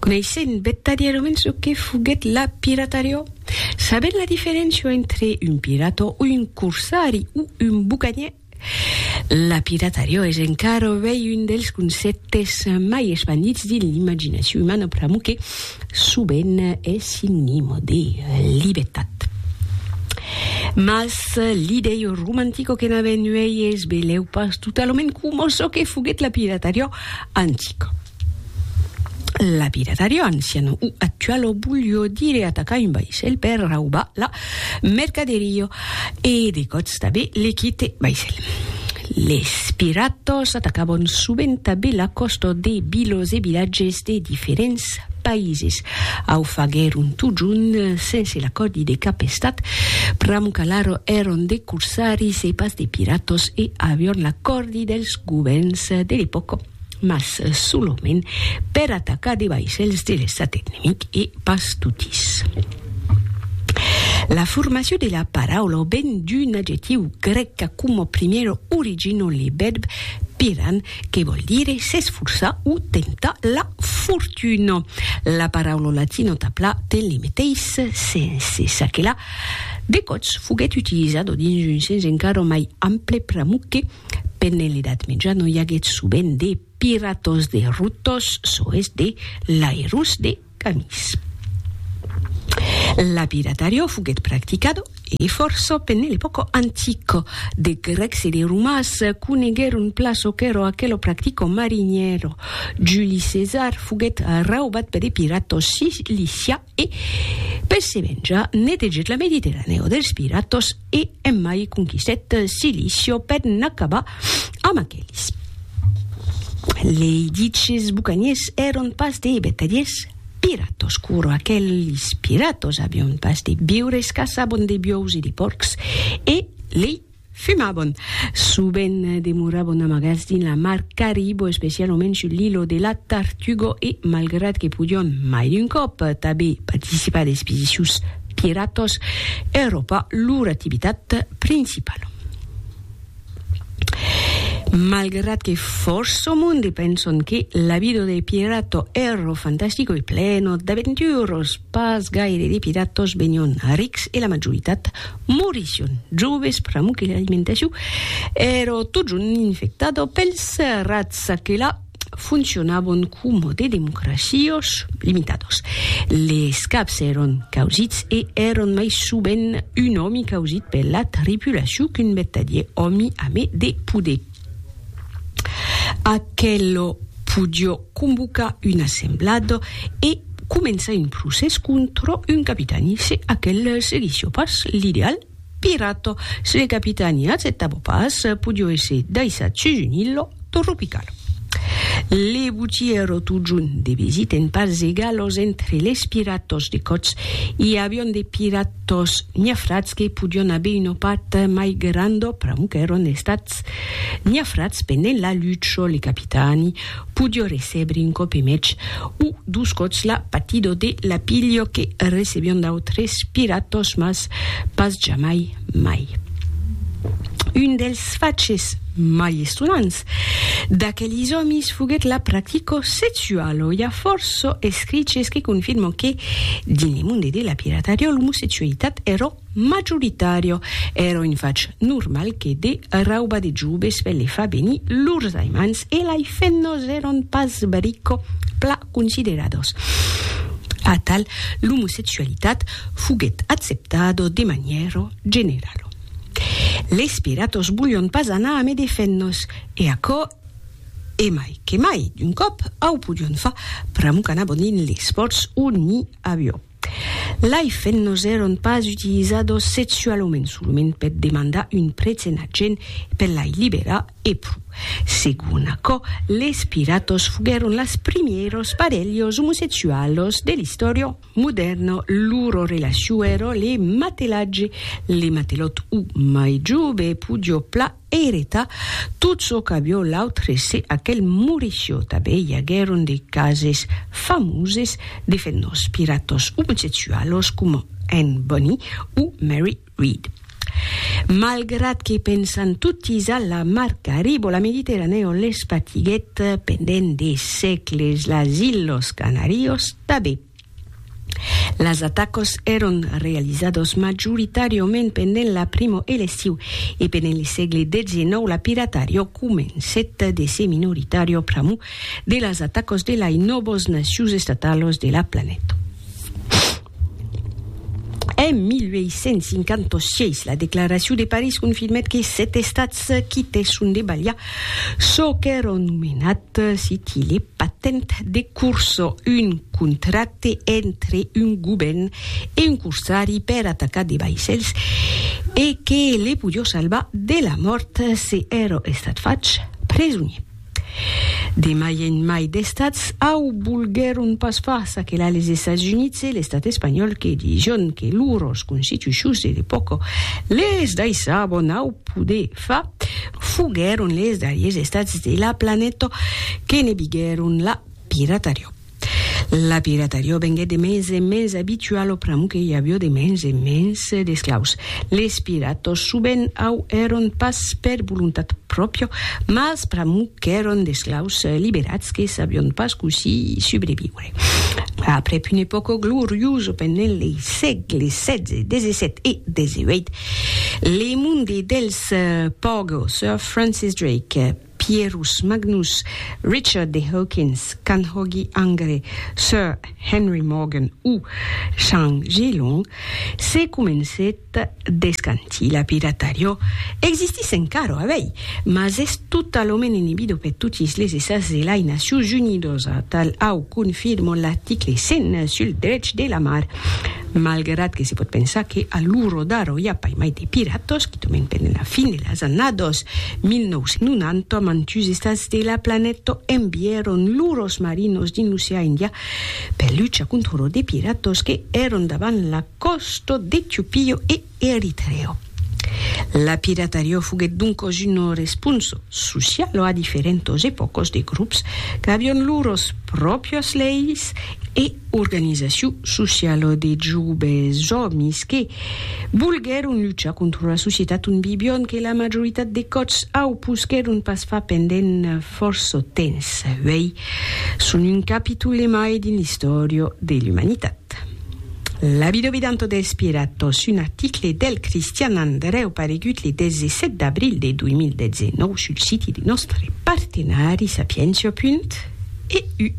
Coneissent vertadièrament çò que foguèt la piratariá, sabent la diferéncia entre un pirata, un corsari o un bucanier, la piratariá es encara avei un dels concèptes mai espandits dins l'imaginacion umana pr'amor que sovent es sinonima de libertat. Mas l'idei romantica que n'avèn uèi es belèu pas totalament coma çò que foguèt la piratariá Antic. Lapidatario ancian o actual o bullió dire atacar un vaissèl per raubar la mercaderio e de còts tabé le quite vaissèl. Les piratòs atacabon sovent tabé la còsta de vilos e vilatges de diferents Païses. Au faguèron totjorn sense l'acòrdi de cap estat. Pram qu'alara èron de corsaris e pas de piratas e avián l'acòrdi dels govèrns de l'epòca, mas solament per atacar de vaissèls de l'estat enemic e pas totis. La formacion de la paraula ven d'un adjectiu grèc qu'a'a coma primièra origina le vèrb piran, que vòl dire s'esforçar o temptar la fortuna. La paraula latina tapla ten le meteis sens, e ça que la, de còps foguèt utilizada dins un sens encara mai ample pr'amor que, pendent l'Edat Mèja, no i aguèt sovent de piratòs de rotòs, soes de lairós de. Canis. L'abiratario foguèt practicado, e fòrça, pene l'epòca antica. De grècs e de romans coneguèron plan çò qu'èra aquelo practico marinièro. Juli Cesar foguèt raubat per de piratos cilicià e, per se venjar, netegèt la Mediterranèo dels piratos. E emai conquistèt Cilicio per n'acabar amb aqueles. Lei diches bucaniers èron pas de vertadiers piratòs, curo aqueles piratòs avion pas de biures, caçabon de biòus e de pòrcs, e lei fumabon. Sovent demorabon amagats dins la mar Caribo, especialament sul lilo de la Tartugo e malgrat que podion, mai d'un còp, tanbé participar d'expedicions Piratos Europa lor activitat principala. Malgrat que fòrça monde penson que la vida de pirato ero fantastico e pleno d'aventuros, pas gaire de piratos venion rics e la majoritat morission joves pr'amor que l'alimentacion ero totjorn infectada pels rats. Aquela. foncionabon coma de democracios limitados. Les caps èron causits e èron mai sovent un òmi causit per la tripulacion qu'un vertadier òmi ame de poder. Aquelo podió convocar un assemblado e començar un procès contra un capitani se aquel seguissió pas l'ideal Pirato, se le capitani acceptavo pas, podio èsser daissat sus un illo tropical. Le botièro totjorn de visit en parts egalos entre les piratos de còts. I avion de piratos niafrats que podion aver una part mai granda, pr'amor qu'èron estats niafrats pendent la lucha. Le capitani Podió recebre un còp e mètz o dos còps la patidor de lapilho que recebion d'autres piratòs mas pas jamai mai. Un dels faches mai estonants d'aquelis òmis foguèt la practicò sexualo. I a fòrço escriches que confirmon que, dins le monde de la piratariò, l'omosexualitat èra Majoritària èra un fach normal que de raubar de joves per le far venir lors aimants e lai femnas èran pas bric pla consideradas. Atal, l'omosexualitat foguèt acceptada de manièra generala. Les piratas volián pas anar amé de femnas e aquò e mai que mai d'un còp au podián far pr'amor qu'anavan dins les pòrts o n'i aviá. Lai fennos èron pas utilizados sexualament, solament per demandar un prètz ena gent e per lai liberar, e pro. Segon aquò, les piratos foguèron las primièros parelhos omosexualos de l'istòria. Modèrna, loro relacion èra le matelatge, le matelòt o mai jove podió pla. Ereta, tot çò qu'avió l'autre se aquel morissió tabé i aguèron de cases famoses de fenòs piratos omosexualos coma Anne Bonny o Mary Read. Malgrat que pensan totis a la mar Carib o la Mediterranèa on les patiguèt pendent de sègles las Ilhos Canarios tabé. Las atacas èron realizadas majoritàriament pendent la primo e l'estiu, e pendent le sègle xix la piratària comencèt de se minoritària a pr'amor de las atacas de lai nòvas nacions estatalas de la planeta. En 1856 la Declaracion de París confirmèt que sèt estats quitèsson de balhar Çò qu'èron nomenat siti le patent de corsa, un contracte entre un govèrn e un corsari per atacar de vaissèls e que le podió salvar de la mòrt se èra estat fach presonier. De mai en mai d'estats au volguèron pas far, ça que la les Estats Units e l'estat espanhòl que dision que lors constitucions de l'epòca les daissabon au poder Fa, foguèron les darriers estats de la planeta que ne biguèron la piratarió. La piratarió venguèt de mens en mens abituala pr'amor que i avió de mens en mens d'esclaus. Les piratas sovent au èron pas per volontat pròpia, mas pr'amor qu'èron d'esclaus liberats que sabion pas cossí subreviure. Aprèp una epòca gloriosa pendent lei sègles setze, desesèt e deseueit, le monde dels Pogo, Sir Francis Drake, Pierus Magnus, Richard de Hawkins, Canhoggy Angre, Sir Henry Morgan o Chang Zhilong, se comencèt Descanti, la piratariò existís encara, a vei, mas es totalament inibida per totis les estats de lai Nacions Unidas, atal au confirma l'article 100 sul drech de la mar. Malgrat que se pòt pensar que a l'ora d'ara i a pas mai de piratas, quitament pendent la fin de las annadas 1990, mantuns estats de la planeta envièron lors marinos dins l'ocean Indian per luchar contra de piratas que èran davant la còsto d'Etiopio e Eritreo. La piratariò foguèt doncòs un responso socialo a diferentos epòcos de grops qu'avion lors pròpias leis e organizaciu socialo de joves òmis que volguèron luchar contra la societat ont vivion que la majoritat de còps au posquèron pas far pendent fòrça temps. Uèi son un capitol de mai dins l'istòria de l'umanitat. Labido bidanto dels piratos, un article del Cristian Andrèu paregut le 17 d'abril de 2019 sul siti de nòstre partenari Sapientia. EU.